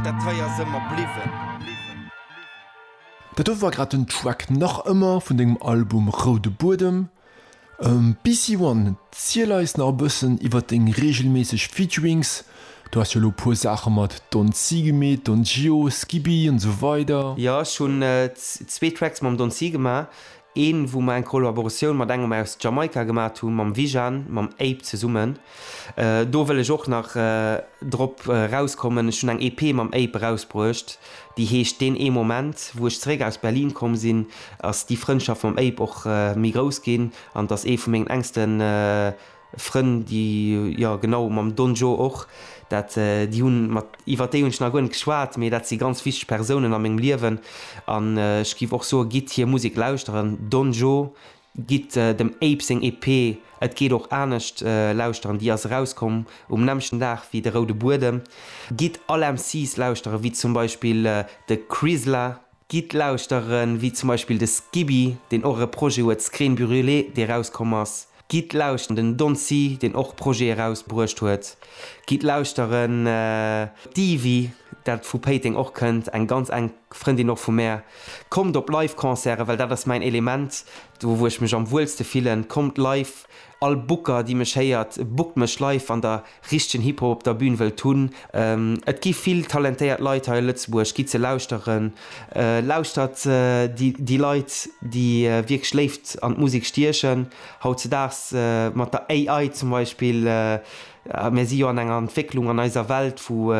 Dat hei ass ëmmer bliwwen. Dat do war grad den Track Nach ëmmer vun dengem Album Roude Buedem. BCOne, ziel eis nach e bëssen iwwert deng reegelméisseg Featurings. Du has jo elo e puer Saache mat Don C gemeet, Don Gio, Skibby an esou weider. Jo, ech hunn zwee Tracks mam Don C gemaach. Een, wou mer eng Kollaboratioun mat engem aus Jamaika gemaat hu, mam Wijan, mam Ape zesummen. Do wëll ech och nach drop erauskommen. Ech hunn eng EP mam Ape erausbruecht, déi heescht Deen ee Moment. Wou ech zeréck aus Berlin komm sinn, ass déi Frëndschaft mam Ape och méi grouss ginn, an 't ass ee vu mengen engsten Frënn déi jo genau mam Don Joe och dat déi hunn mat iwwert déi hunn ech nach guer net geschwat mee dat si ganz wichteg Persounen a mengem Liewen an ech giff och soe gitt hir Musek lauschteren Don Joe gitt dem Ape seng EP Et geet och anescht lauschteren déi ass erauskomm um nämmchen Dag wéi de Roude Buedem gitt all MCs lauschteren wéi zum Beispill de Krisla Gitt lauschteren, wéi zum Beispill de Skibby, deen och e Projet huet, Screen Brûlée, dee rauskomm ass. Gitt lauschteren, den Don C, deen och Projete rausbruecht huet. Gitt lauschteren, d'Ivy, dat vu Péiteng och kënnt, eng ganz enk Frëndin och vu mär. Kommt op Live-Concerten, well dat ass mäin Element, do wou ech mech am wuelste fillen. Kommt live! All Booker déi mech héiert, bookt mech live wann der richtegen Hip Hop op der Bühn wëllt hunn. Et gi vill talentéiert Leit hei a Lëtzebuerg, gitt se lauschteren, lauschtert déi Leit déi wierklech Léift an d'Musek stiechen. Hautzedaags mat der AI zum Beispill, mir si jo an enger Entwécklung an eiser Welt wou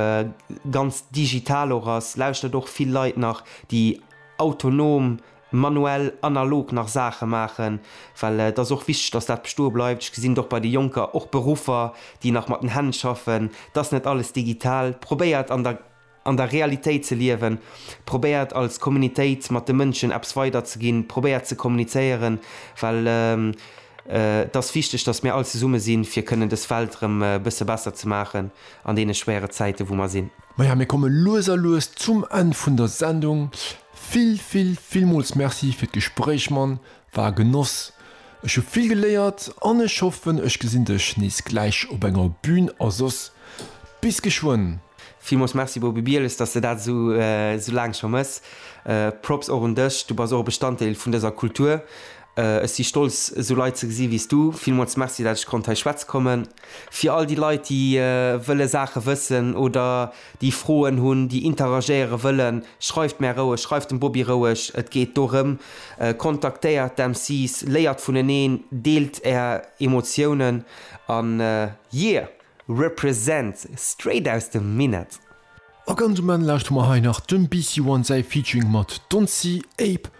ganz digital och ass, lauschtert och vill Leit nach déi autonom manuell, analog nach Saache maachen, well et ass och wichteg, dass dat bestoe bleift. Ech gesinn et och bei de Jonker, och Beruffer, déi nach mat den Hänn schaffen. Et ass net alles digital. Probéiert an der an der Realitéit ze liewen. Probéiert als Communitéit mat de Mënschen eppes weiderzeginn. Probéiert ze kommunizéieren, well et ass wichteg, dass mir all zesumme sinn, fir kënnen dës Welt erëm e bësse besser ze maachen an deene schwéiere Zäiten, wou mer sinn. Maja, mir komme lues a lues zum Enn vun der Sendung. Vill vill villmools Merci fir d'Gespréich man, war e Genoss. Ech hu vill geléiert an ech hoffen ech gesinn dech nees gläich op enger Bühn a soss bis geschwënn. Villmools Merci Boby Bieles, dass de dat esou esou laang scho mëss. Props och un dech, du bass och e Bestanddeel vun dëser Kultur. Ech si stolz esou Leit ze gesi wéi's du. Villmools Merci dat ech konnt hei schwätze kommen. Fir all déi Leit déi wëlle Saache wëssen oder déi Froen hunn, déi interagéiere wëllen, schreift mär roueg, schreift dem Bobi roueg. Et geet dorëm, kontaktéiert d'MCs, léiert vuneneen, deelt är Emotiounen an yeah! Represent! Straight aus dem Minett! A ganz um Enn lauschteren mer hei nach dem BC One säi Featuring mat Doncy, Ape.